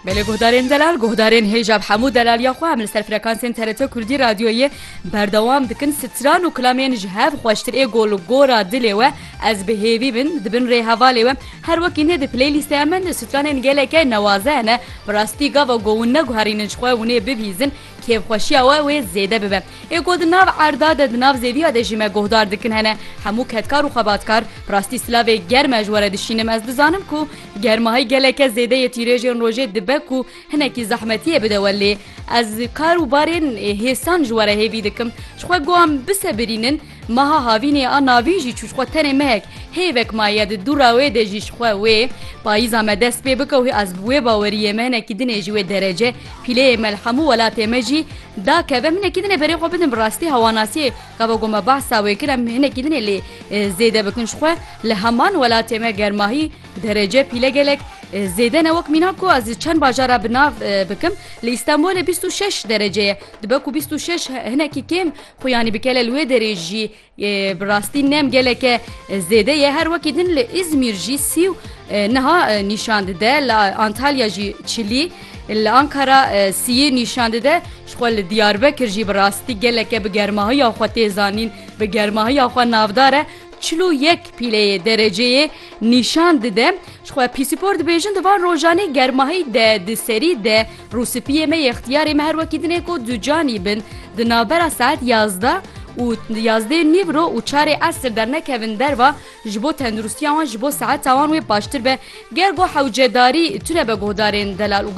Belê guhdarên delal guhdarên hêja bi hemû delaliya xwe em li ser frekansên TRT Kurdî radyoyê berdewam dikin stran û kilamên ji hev xweştir ê gol û gora dilê we ez bi hêvî bin di bin rê hevalê we her wekî nê di playlîsteya min stranên geleke newaze hene bi rastî gava ku hûn neguherînin ji xwe hûnê bibîzin Kêfxweşiya we wê zêde bibe. Ê ku di nav erda de di nav zêdiya de jî me guhdar dikin hene. Hemû kedkar û xebatkar, rastî silavê germ e ji we re dişînim. Ez dizanim ku germahî geleke zêde yê tîrêjên rojê dibe ku hinekî zehmetiyê bide we lê ez kar û barên hêsan ji we re hêvî dikim. Ji xwe guham bisebirînin. Meha havînê a navîn jî çû ji xwe tenê mehek, hêvek maye di dûra wê de jî ji xwe wê payîza me dest pê bike û ez bi wê baweriyê me hinekî din ê ji wê derece pîleyê me li hemû welatê me jî dakeve em hinekî din ê berê xwe bidin bi rastî hewanasiyê gava ku me behsa wê kir em hinekî din ê lê zêde bikin ji xwe li heman welatê me germahî derece pîle gelek zêde ne wek mîna ku ez çend bajara bi nav bikim li Îstanbulê bîst û şeş derece ye dibe ku bîst û şeş hinekî kêm Xwe yanî bikele li wê derê jî bi rastî nem geleke zêde ye. Her wekî din li Îzmîr jî sî û niha nîşan dide. Li Antalya jî çilî, li Ankara sîyê nîşan dide. Jixwe li Diyarbekir jî bi rastî geleke bi germahiya xwe tê zanîn, bi germahiya xwe navdar e. Çil û yek pîleyê dereceyê nîşan dide. Jixwe pîsîpor dibêjin di van rojanê germahî de di serî de Rûspiyê me yextiyarê me her wekî din ê ku ducanî bin di navbera saet yazdeh û yazdê nîv ro û çarê esr dernekevin derva ji bo tenduristiya wan ji bo seheta wan wê baştir be ger ku hewcedarî tune be guhdarên delal û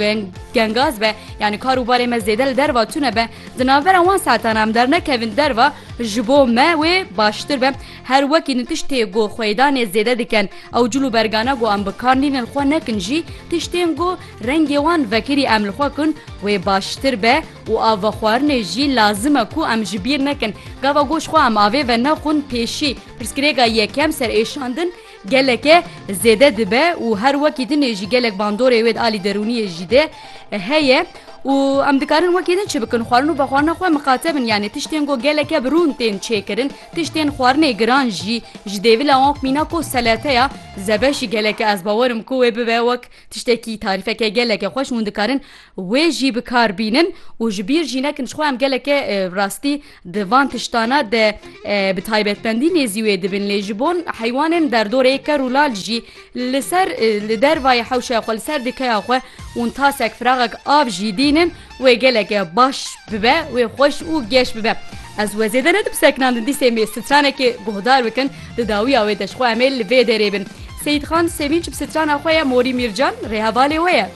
gengaz be yanî kar û barê me zêde li derva tune be di navbera wan saetan em dernekevin derva ji bo me wê baştir be her wekî din tiştê ku xwêdanê zêde diken ew cil û bergana ku em bi kar nînin xwe nekin jî tiştên ku Rengê wan vekirî em li xwe kun wê baştir be û av vexwarinê jî lazim e ku em ji bîr nekin. Gava goş xwe em avê ve nexwin pêşî. Pirsgirêka yekem ser êşandin geleke zêde dibe û her wekî din ê jî gelek bandorê wê di alî derûniyê jî de heye û em dikarin wekî din çi bikin? Xwarin û vexwarina xwe miqate bin yanê tiştên ku geleke bi rûn tên çêkirin, tiştên xwarinê giran jî ji dêvila wan mîna ku seleteya zebeşî geleke ez bawer im ku wê bibe wek Tiştekî tarîfeke geleke xweş hûn dikarin wê jî bi kar bînin û ji bîr jî nekin jixwe em geleke bi rastî di van tiştana de bi taybetmendî nêzî wê dibin lê ji bon heywanên derdorê ker û lal jî li ser li dervayê hewşeya xwe li ser dikeya xwe hûn tasek firaxek av jî dînin Wê geleke baş bibe, wê xweş û geş bibe. Ez we zêde nedim seknandin dîsê mê stranekê guhdar bikin di dawiya wê de ji xwe em ê li vê derê bin. Seyîdxan Semînç bi strana xwe ye Morî Mîrcan rêhevalê we ye.